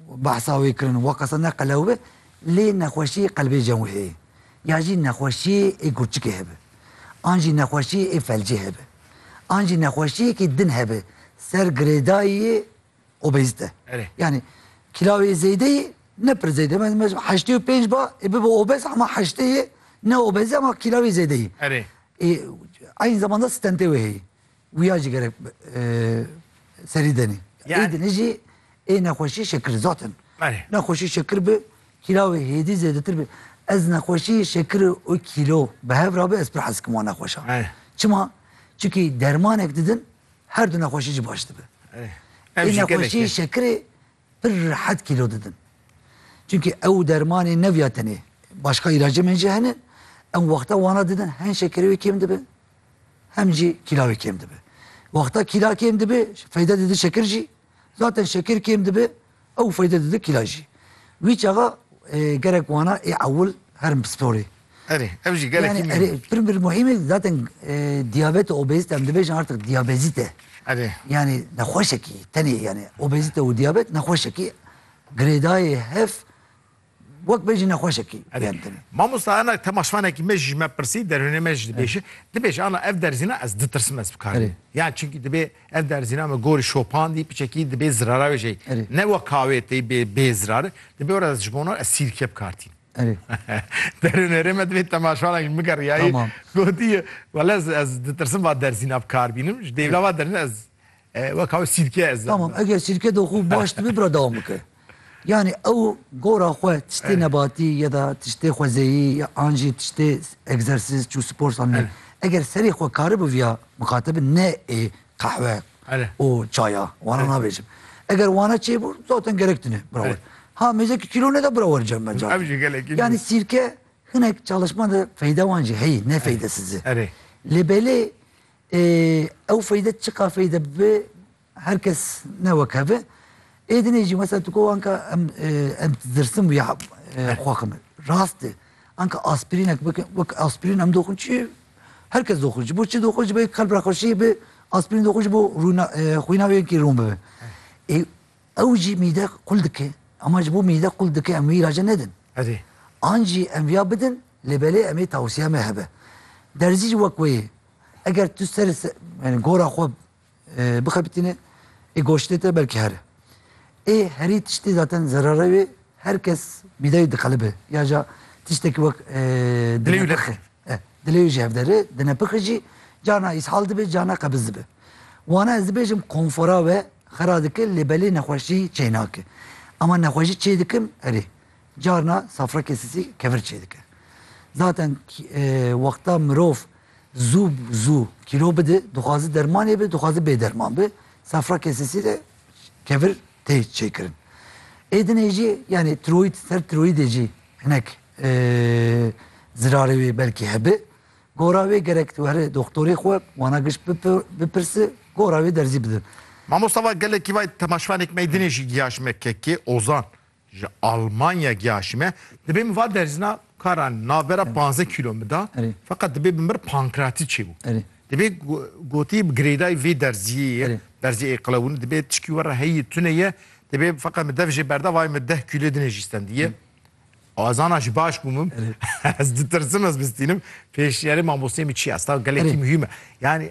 Behsa wê kirin wa qasa ne qelew be lê nexweşiyê qelbê cem wê heye ya jî nexweşiyê ê gurçikê hebe an jî nexweşiyê ê felcê hebe an jî nexweşiyekî din hebe ser girêdayiyê obezite yanî kîlawê zêdeyî ne pir zêde me me ji heştê û pênc ba ê bibe obez hema heştê ye ne obez e hema kîlawê zêdeyî ê eyn zeman de stentê wê heye. Wî ya jî gerek serî denê. Ê dinê jî ê nexweşî şekir zaten. Nexweşî şekir bi kîla wê hêdî zêdetir bi. Ez nexweşî şekir û kîlo bi hev ra bi ez pir hez dikim wan nexweşan. Çima? Çikî dermanek didin her du nexweşî jî baş dibe. Ê nexweşî şekirê Pir rehet kîlo didin. Çimkî ew dermanê neviya tenê. Başka îlacê min jî hene. Em wexta wana didin hem şekerê wê kêm dibe hem jî kîla wê kêm dibe. Wexta kîla kêm dibe feyde dide şeker jî. Zaten şeker kêm dibe ew feyde dide kîla jî. Wî çaxa e, gerek wana ê ewil herin pisporê. Erê, ev jî gelekî Yani mîn erê e. pir bir muhîm e zaten e, diyabet û obezite em dibêjin artık diyabezite. Erê. Yani nexweşekî tenê yani obezite û diyabet nexweşekî girêdayê hev wek bêjin nexweşekî Erê. yani tenê. Mamosta enak temaşvanekî me ji me pirsî derûnê me jî dibêje. Dibêje ana ev derzîna ez ditirsim ez bikarim. Erê. Yani çünkü dibê ev derzîna me gorî şopandî piçekî dibê zirara wê jey. Erê. Ne wek kawê tey bê bê zirari. Dibê ora ez ji bona ez sîrke bikartînim. Erê. Derê nerê me divê temaşarekî bike riyayî. Tamam. Gotiye wele ez ez ditirsim va derzîn a bi kar bînim. Ji dêvla va derzîn ez weka wê sîrke ez. Tamam eger sîrke de xwe baş dibe bira dewam bike. Yani ew gora xwe tiştê nebatî ya da tiştê xwezeyî ya an jî tiştê egzersîz çû spor sandî. Eger serê xwe karibû viya mixatebi ne ê qehwe û çaya wana nabêjim. Eger wana çêbû zaten gerek tune bira we. Ha mêzeke kîlo neda bira we cem me cam. Ev jî gelekî jû. Yanî sîrke hinek çalışma de feyde wan jî heyî ne feydesiz e. Erê. Lê belê ew feyde çiqa feyde bi her kes ne wek hev e. Ê dinê jî mesela tu got anka em em dirsin bûye xwe xwe me. Rast e. Anka aspirînek bikin wek aspirîn em doxin çi Her kes doxûr, ji bo çi doxûr ji bo yê qelb re xweşî bi, aspirîn doxûr ji bo rûna xwîna wê yekî rûn bibe. Ê ew jî mîde qul dike ama ji bo mîde qul dike em wî îlaca nedin. Erê. An jî em viya bidin lê belê em ê tawsiya me hebe. Derzî jî wek wê ye. Eger tu ser yani gora xwe Bixebitîne ê goştê te belkî here. Ê herî tiştî zaten zerare wê her kes mîdeyê diqelibe ya ca tiştekî wek dinepixe. Dilê wî jî hevdere, dinepixe jî carna îshal dibe carna qebiz dibe. Wana ez dibêjim konfora we xera dike lê belê nexweşî çênake. Ema nexweşî çêdikim erê Carna safrekê sisî kevir çêdike. Zaten wexta mirov zû zû kîlo bide, dixwaze dermanê be, dixwaze bê derman be, safrekê sisî de kevir tê çêkirin. Êdinê jî yanî tiroîd ser tiroîdê jî hinek zirarê wê belkî hebe. Gora wê gerek tu here doktorê xwe wana giş bipirse gora wê derzî bidin. Mamosta va gelekî vay temaşvanêk meydinê jî giya ji me kekê Ozan. Ji Almanya giya ji me dibê min va derzîna kara navbera panzdeh kîlo min da feqet dibê bi min re pankreatît çêbû. Dibê gotî bi girêdayî vê derziyê ye derzî ê qilewin dibê tişkî we re heyî tune ye dibê feqet min dev jê berda vayê min deh kîlo dinê jî stendiye. Azana ji baş bû min ez ditirsim ez bistînim pêşniyarê mamosteyê min çi ye ez taw gelekî muhîm e yanî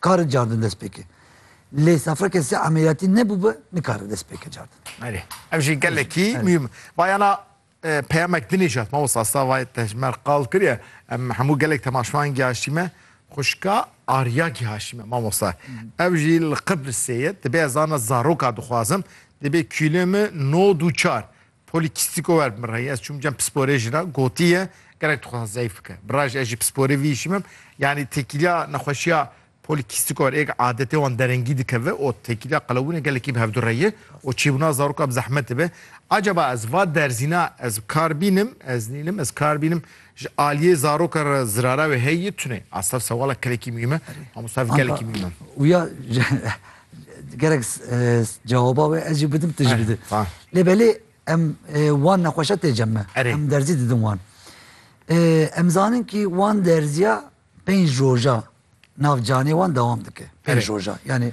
Kare cardin dest pêke. Lê safra kesê emeliyatî nebûbe nikare dest pêke cardin. Belê. Ev jî gelekî mîm. Bayana e, peyamek dinêjat mamosta asta vay tejmer qal kiriye. Em hemû gelek temaşvan gihaşîme. Xuşka Arya gihaşîme mamosta. Ev jî li Qibrisê ye. Dibe ez zana zaroka dixwazim. Dibe kîlê min nod û çar. Polîkîstîko wer bi min re ye. Ez çûm cem pisporê jî re gotiye gerek dixwazin zeyf bike. Bi re jî ez jî pisporê vî îşî bim. Yanî têkîliya nexweşiya polîkîstîko wer êk adetê wan derengî dikeve û têkîliya qelewbûnê gelekî bi hevdu re ye û çêbûna zaroka bi zehmet dibe. Acaba ez va derzîna ez bi kar bînim, ez nînim, ez kar bînim ji aliyê zaroka re zirara wê heye tune? A sef sewala kelekî muhîm e. Mamosta ev gelekî muhîm e. Û ya Gerek cewaba wê ez jî bidim tu jî bidî. Lê belê em wan nexweşa tê cem me. Em derzî didin wan. Em zanin kî wan derziya pênc roja nav canê wan dewam dike. Pênc roja yanî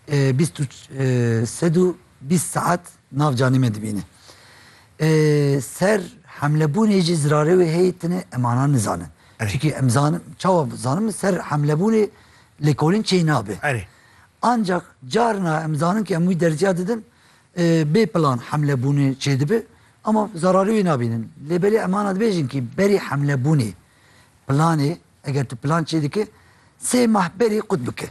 bîst û sed û bîst saet nav canê me dibîne. Ser hemlebûnê jî zirarê wê heye tune em ana nizanin. Çikî em zanin çawa zanin min ser hemlebûnê lêkolîn çê nabe. Ancak carina em zanin ke em wî derziya didin bê plan hemle bûnê çêdibi ama zerarî wî nabînin. Lê belê em ana dibêjin kî berî hemle bûnê planê eger tu plan çêdikî sê mah berî qut bike.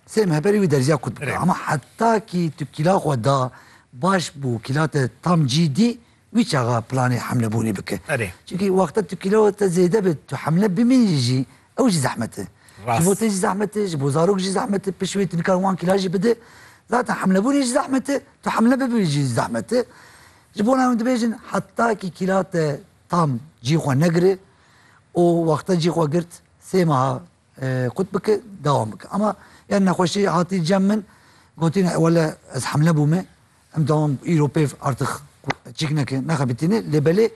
Sê meh berî wî derziya qut bike. Ama heta kî tu kîla xwe da baş bû kîla te tam cî dî Wî çaxa planê hemlebûnê bike. Erê. Çimkî wexta tu kîloa te zêde be, tu hemle bimînî jî ew jî zehmet e. Rast. Ji bo te jî zehmet e, ji bo zarok jî zehmet e, pişt wê tu nikare wan kîla jî bide. Zaten hemlebûnê jî zehmet e, tu hemle bibî jî zehmet e. Ji bona em dibêjin heta kî kîla te tam cî xwe negire û wexta cî xwe girt sê meha qut bike dewam bike. Ama ya nexweşî hatî cem min gotîne wele ez hemle bûme Em dewam îro pêv artix çîk neke nexebitîne lê belê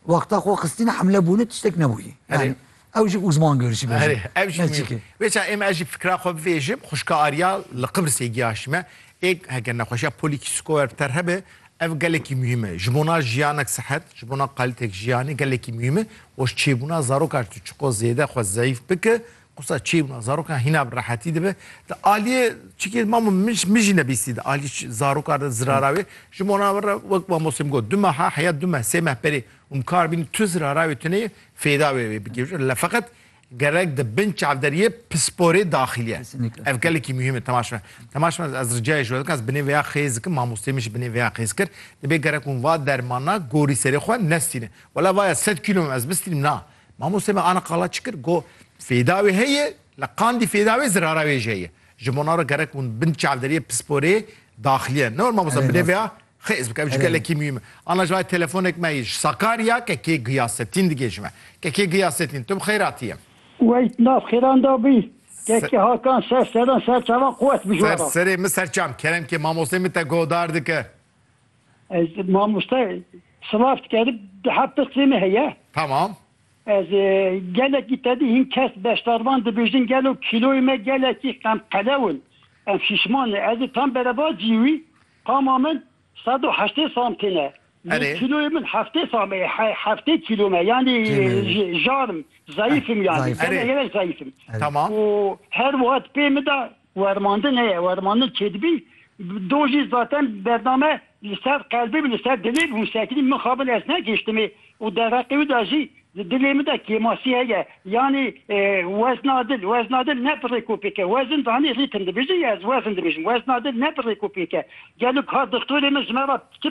wexta xwe xistîne hemle bûne tiştek nebûye. Erê. Yani ew jî uzman görişî bejî. Erê ev jî Ne mîr. çîkê. Vê ça êm ez jî fikra xwe bivêjim, xwişka Arya li Qibrisê giyaşî me. Ê heke nexweşiya polîkîskoer bi te re hebe, ev gelekî muhîm e. Ji bona jiyanek sihet, ji bona qalîtek jiyanê gelekî muhîm e û ji çêbûna zarokan tu çiqo zêde xwe zeyîf bike, Qisa çê wina zarokan hîna bi rehetî dibe. Di aliyê çikê mamo min jî nebîstî di aliyê zarokan re zirara wê ji mona min re wek mamostê min got du meha heya du meh sê meh berê û min kar bînî tu zirara wê tu neyê fêda wê wê bikevjin le feqet gerek di bin çavderiyê pisporê daxilî ye. Ev gelekî muhîm e temaş me. Temaş me ez ricayê ji we dikim ez binê vêya xêz dikim mamostê min jî binê vêya xêz kir dibê gerek hûn va dermana gorî serê xwe nestînin. Wela vaya sed kîlo ez bistînim na Mamostê me ana qala çi kir, got, Fêda wê heye, li Qandî fêda wê zirara wê jî heye. Ji bo na re gerek hûn bin çavderiyê pisporê daxiliye. Ne were mamosta bi rêveya xêz bike, ev jî gelekî mûhîm e. Ana ji ber telefonek me yê ji Sakarya Kekê Giyasetîn digê ji me. Kekê Giyasetîn, tu bi xêr hatiyê. Wey di nav xêran de bî. Kekê Hakan ser seran ser çavan quwet bijwara. Ser serê min serçam. Keremkê mamostê min te guhdar dike. Ez mamoste silav diker biha pirsê me heye. Tamam. Ez gelekî te dî hîn kes beşdarvan dibêjin gelo kîloyê me gelekî qemqelew in. Em şîşman ne. Ez ê tam bereva cî wî qama min sed û heştê sam têne. Erê. Kîloyê min heftê sam e, heftê kîlo me. Yanî jar im, zayîf im yanî. Gelek gelek zayîf im. Tamam. Û her wiha di pê min de Wermandin heye, wermandin çêdibî do jî zaten bername li ser qelbê bi li ser dilê bi hûsekinî mixabin ez negihiştimê û dereqê wî de jî di dilê min de kêmasî heye yanî wezna dil, wezna dil ne bi rêk û pêk e wezin zanî rîtim dibêjin ya ez wezin dibêjim wezna dil ne bi rêk û pêk e gelo ka dixtorê min ji me re çi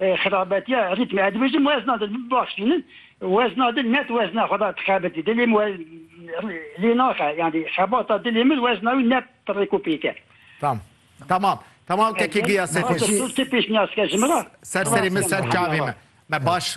Xerabetiya rîtmê ez dibêjim wezna di baş bînin wezna di net wezna xwe da dixebitî dilê min lê naxe yanî xebata dilê min wezna wî net rêk û pêk e. Tamam. Tamam. Tamam tekî giya sê xweş. Pêşniyaz ke ji min re. Ser serê min ser çavê me. Me baş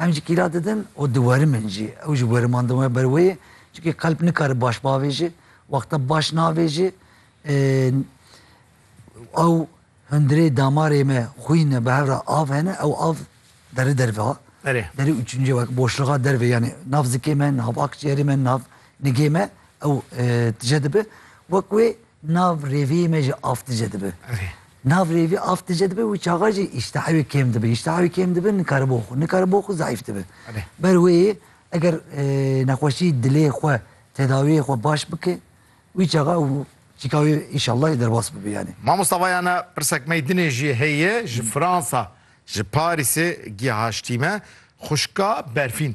Em ji kîla didin û diwarimin jî. Ew ji weriman di we ber wê ye. Çunkî qelb nikare baş bavêje. Wexta baş navêje ew hundirê damarê me xwîn e bi hev re av hene ew av deri derve ha. Erê. Derê û çûncê wek boşluxa derve yanî nav zikê me, nav akciyerê me, nav nigê me ew tije dibe. Wek wê Nav rêviyê me jî af dice dibe. Nav rêvî af dice dibe û çaxa jî îştiha wê kêm dibe. Îştiha wê kêm dibe nikare bo xwe. Nikare bo xwe zayîf dibe. Ber wê yê eger nexweşî dilê xwe tedawiyê xwe baş bike wî çaxa ew çîka wê înşallah derbas bibe yanî. Mamosta vayana pirsek meydinê jî heye ji Fransa ji Parîsê gihaştî me. Xwişka Berfîn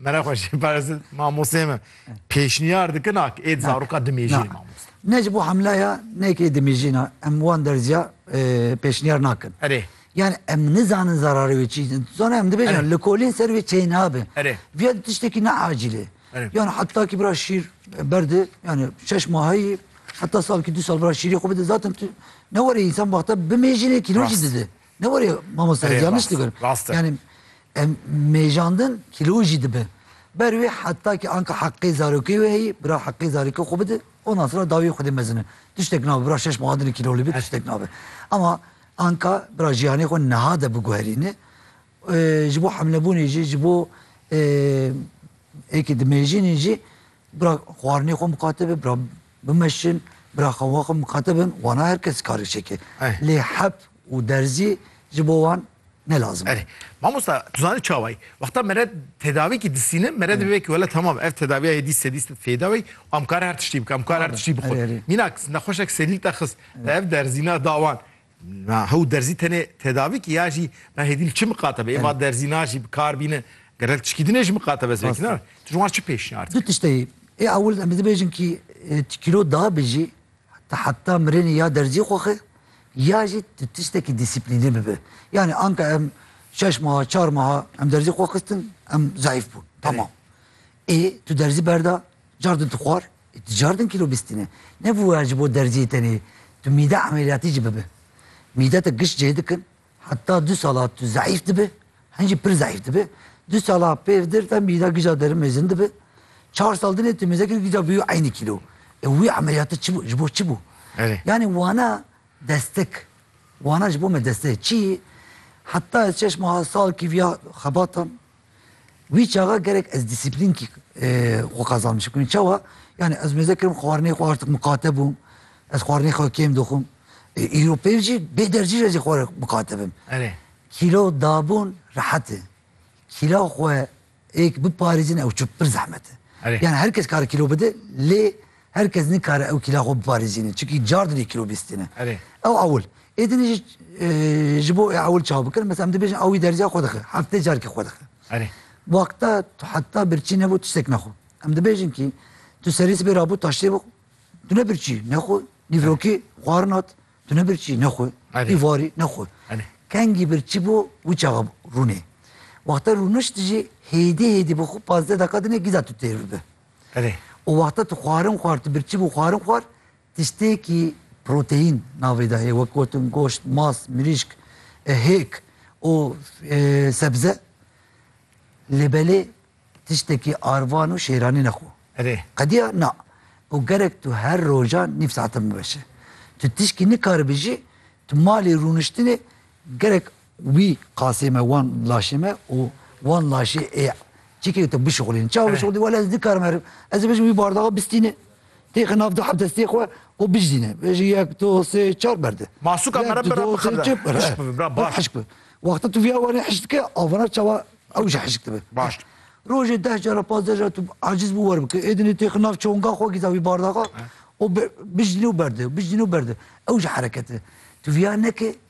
Mera xweşî parastin mamosê me. Pêşniyar dikin ak êd zaroka dimêjî mamoste. Ne ji bo hemlaya nekê dimêjîna em wan derziya e, pêşniyar nakin. Erê. Yani em nizanin zararê wê çi. Zana em dibêjin li kolên ser wê çê nabe. Erê. Viya tiştekî ne acîlê. Erê. Yani heta ki bira şîr berdi yani şeş mahayî heta salkî du sal bira şîrê xwe bide zaten tu ne were însan baxte bimêjînê kîlojî dide. Ne were mamosta Erê, yanlış rast, dikirim. rast e. Yani em mêjandin kilo jî dibe. Ber wê heta ki anka heqê zarokê wê heyî, bira heqê zarokê xwe bide, ondan sonra dawiyê xwedê mezine. Tiştek nabe bira şeş meha dinê kilolî be tiştek nabe. Ama anka bira jiyanê xwe niha de biguherîne. Ee, Ji bo hemlebûnê jî, ji bo ee, êkê dimêjînê jî bira xwarinê xwe miqate be, bira Bimeşin, bira xwe wan xwe mixatibin, wana her kes karê çeke. Lê hep û derzî ji bo wan ne lazim e. Erê, mamosta tu zanî çawa yî? Wexta mere tedavîkî disînin, mere dibe vekî wele temam ev tedaviya yê dî sedî sed fêda wî û em kare her tiştî bikin, em kare her tiştî bixwin. Mînak nexweşek selîl te xist, te ev derzîna da wan. Na hew derzî tenê tedavî ki ya jî na hêdî li çi miqate be. Ê va derzî na jî bi kar bîne. Ger hel tişkî dinê ji miqate be zivekî na. Tu ji wan çi pêşniyar dikî? Du tişt heye. Ê ewil em dibêjin ki tu kîlo da bijî tu heta mirinê ya derzî xwe xwe ya jî tu tiştekî dîsîplînê bibe. Yanî anka em şeş meha çar meha em derzî xwe xistin em zayîf bûn. Tamam. Ê tu derzî berda cardin tu xwar ê tu cardin kîlo bîstîne. Ne bûye ji bo derziyê tenê tu mîde emeliyatî jî bibe. Mîdete giş cih dikin heta du sala tu zeîf dibe hin jî pir zeîf dibe. Du sala pêv dir de mîda gija derin mezin dibe. Çar sal dinê tu mêzekî gija bûye eynî kîlo. Ê wî emeliyate çi bû ji bo çi bû? Yanî wana destek wana ji bo me desteyê. Çiyê heta ez çeşma salkî viya xebatan Wî çaxa gerek ez dîsîplînkî xwe qezan bişim kirin. Çawa? Yani ez mêze kirim xwarinê xwe artık miqate bûm. Ez xwarinê xwe kêm dixwim. Îro pêv jî bê dercî re jî xwe miqate bim. Kîlo dabûn rehet e. Kîla xwe êk biparêzin ew çi pir zehmet e. Yani her kes kare kîlo bide lê Her kes nikare ew kîla xwe biparêzîne çikî car di vê kîlobîstê ne. Ew ewil ê din jî ji bo ê ewil çaw bikin mesela em dibêjin ewî derziya xwe dixe heftê carkî xwe dixe. Wexta tu heta birçî nebû tiştek nexwe. Em dibêjin kî tu serî sibê rabû taştê bixwe tu ne birçî nexwe nîvrokî xwarin hat tu ne birçî nexwe î varî nexwe. Kengî birçî bû wî çaxa rûnê. Wexta rûnişt jî hêdî hêdî bixwe pazdeh deqa dinê gîza tu têr bibe. Erê. O wexta tu xwarin xwar, tu birçî bû xwarin xwar, tiştêkî proteîn navê de heye wek gotin goşt, mas, mirîşk, e, hêk û e, sebze. Lê belê tiştekî arvan û şêranî nexwe. Erê. Qediya na. Û gerek tu her rojan nîv saetin biveşe. Tu tişkî nikaribijî, tu malê rûniştinê gerek Wî qasê me wan laşê me û wan laşê ê çekê tu bişuxulîn. Çawa bişuxulî? Wele ez nikarim herim. Ez ê bijim wî bardaxa bistîne. Têxe nav du heb destê xwe û bijîne. Bêje yek, du, sê, çar berde. Masuka me re bi re bixebite. Yek, du, do, sê, çar berde. Hişk bibe, baş. Hişk bibe. Wexta tu vîya warê hişk dike, avana çawa ew jî hişk dibe. Baş. Rojê deh cara, pazdeh cara tu aciz bû wer bike. Êdinê têxe nav çonga xwe gîza wî bardaxa û bijîne û berde, bijîne û berde. Ew jî herekete. Tu vîya neke.